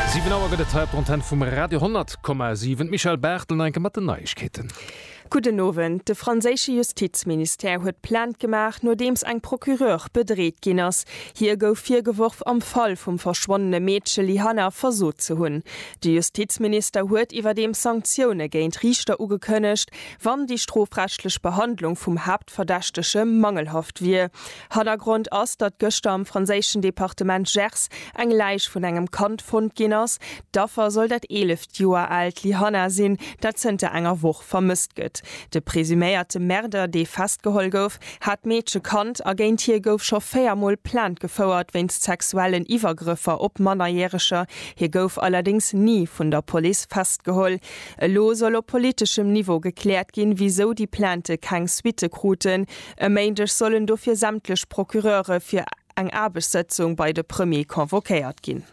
Siwen Auer gëtt et hei op der Antenn vum Radio 10,7. D'Michèle Barthel no enke mat den Neiegkeeten. Gudden Owend. De franséische Justizministère huet Plainte gemaach, nodeems eng Procureure bedreet ginn ass. Hir gouf virgeworf, am Fall vum verschwonnene Meedche Lyhanna versot ze hunn. De Justizminister huet iwwerdeems Sanktioune géint Riichter ugekënnegt, wann déi strofrechtlech Behandlung vum Haaptverdächtege mangelhaft wier. Hannergrond ass, datt gëschter am franséischen Departement Gers eng Läich vun engem Kand fonnt ginn ass. D'Affer soll dat eeleft Joer aalt Lyhanna sinn, dat zënter enger Woch vermësst gëtt. De presuméierte Märder, dee festgeholl gouf, hat d'Meedche kannt a géint hie gouf scho véier Mol Plainte gefouert wéinst sexuellen Iwwergrëffer op Mannerjäreger. Hie gouf allerdéngs ni vun der Police festgeholl. Elo soll op politeschem Niveau gekläert ginn, wisou déi Plaintë keng Suitte kruten. E Méindeg sollen dofir sämtlech Procureure fir eng Aarbechtssëtzung bei de Premier convoquéiert ginn.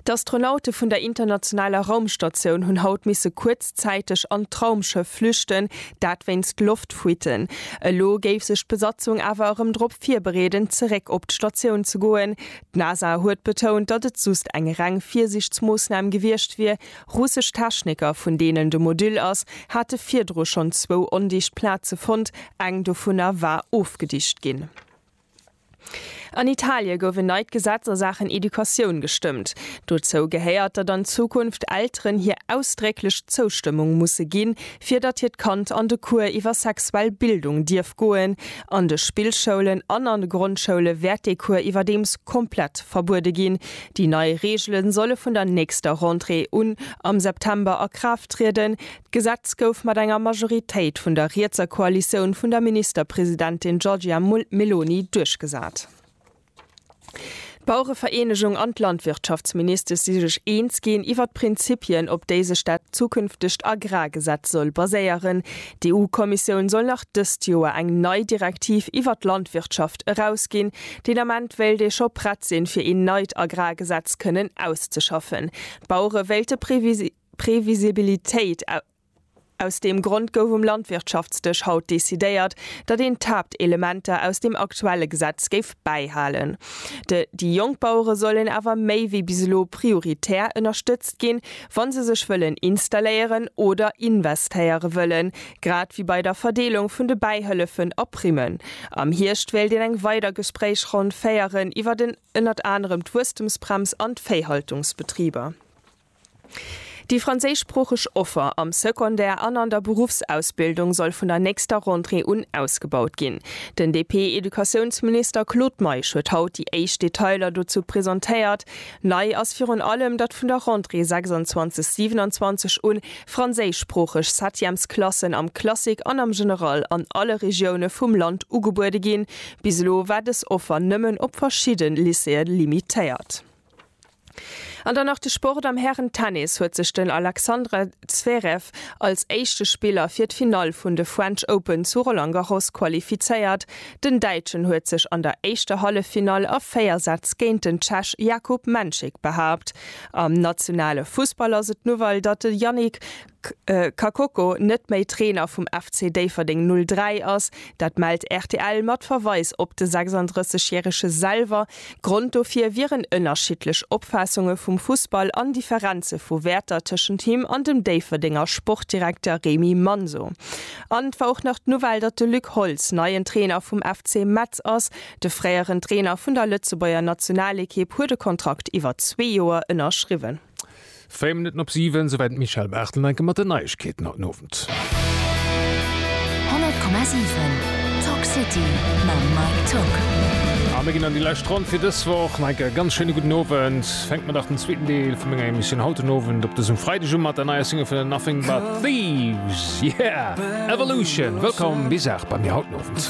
D'Astronaute vun der internationaler Raumstatioun hunn haut misse kuerzzäiteg an d'Raumschëff flüchten, dat wéinst Loftfuitten. Elo géif sech d'Besatzung awer erëm drop virbereeden, zeréck op d'Statioun ze goen. D'NASA huet betount, datt et just eng reng Virsiichtsmoossnam gewiescht wier. Russesch Techniker, vun deenen de Modüll ass, hate virdru schonn zwou ondicht Plaze fonnt, eng dovunner war ofgedicht ginn. An Italie gouf en neit Gesetz a Saachen Educatioun gestëmmt. Dozou gehéiert, datt an Zukunft Elteren hir ausdrécklech Zoustëmmung musse ginn, fir datt hiert Kand an de Cours iwwer sexuell Bildung dierf goen An de Spillschoulen an an de Grondschoule wäert dee Cours iwwerdeems komplett verbuede ginn. Déi nei Reegele solle vun der nächster Rentrée un am September a Kraaft trieden. D'Gesetz gouf mat enger Majoritéit vun der rietser Koalitioun vun der Ministerpresidentin Giorgia Meloni duerchgesat. D'Bauerevereenegung an d'Landwirtschaftsministes si sech eens ginn iwwer d'Prinzipien, op déi sech dat zukünftegt Agrargesetz soll baséieren. D'EU-Kommissioun soll nach dëst Joer eng nei Direktiv iwwer d'Landwirtschaft erausginn. Den Ament wéilt ee scho prett sinn, fir een neit Agrargesetz kënnen auszeschaffen. D'Bauere wéilte Previsibilitéit. Aus deem Grond gouf um Landwirtschaftsdësch haut decidéiert, datt een d'Haaptelementer aus deem aktuelle Gesetz géif bäihalen. De déi jonk Bauere sollen awer méi wéi bis elo prioritär ënnerstëtzt ginn, wa se sech wëllen installéieren oder investéiere wëllen, grad wéi bei der Verdeelung vun de Bäihëllefen a Primmen. Am Hierscht wéilt een eng weider Gespréichronn féieren iwwert ënnert anerem d'Wuesstemsbrems an d'Véihaltungsbetriber. Déi franséischsproocheg Offer am Secondaire an an der Beruffsausbildung soll vun der nächster Rentrée un ausgebaut ginn. Den DP-Educatiounsminister Claude Meisch huet haut déi éischt Detailer dozou presentéiert. Nei ass virun allem, datt vun der Rentrée 26, 27 un franséischsproocheg Septièmesklassen am Classique an am General an alle Regioune vum Land ugebuede ginn. Bis elo war dës Offer nëmmen op verschidde Lycéeë limitéiert. An dann nach de Sport, Am Hären-Tennis huet sech den Alexandre Zverev als éischte Spiller fir d'Finall vun de French Open zu Roland Garros qualifizéiert. Den Däitschen huet sech an der éischter Halleffinall a 4 Sätz géint den Tschech Jakub Menchik behaapt. Am nationale Fussball ass et d'Nouvelle, datt de Yannick Kakoko net méi Trainer vum FC Déifferdeng 03 ass. Dat mellt rtl mat Verweis op de 36 järege selwer. Grond dofir wieren ënnerschiddlech Opfaassunge vum Fussball an Differenze vu Wäerter tëschent him an dem Déifferdenger Sportdirekter Remy Manso. An et war och nach d'Nouvelle, datt de Luc Holtz neien Trainer vum FC Metz ass. De fréieren Trainer vun der Lëtzebuerger Nationalekipp huet e Kontrakt iwwer zwee Joer ënnerschriwwen. Véier Minutten op siwen, souwäit d'Michèle Barthel enke mat den Neiegkeeten haut den Owend. 100,7 Talk City mam Mike Tock. A mir ginn an déi lescht Ronn fir dës Woch. Mike, e ganz schéine gudden Owend. Fänke mer dach den zweeten Deel vu menger Emissioun haut den Owend op dësem Freideg u mat der neier Single vun den Nothing But Thieves, Yeah! Evolution. Wëllkomm bis acht bei mir haut den Owend.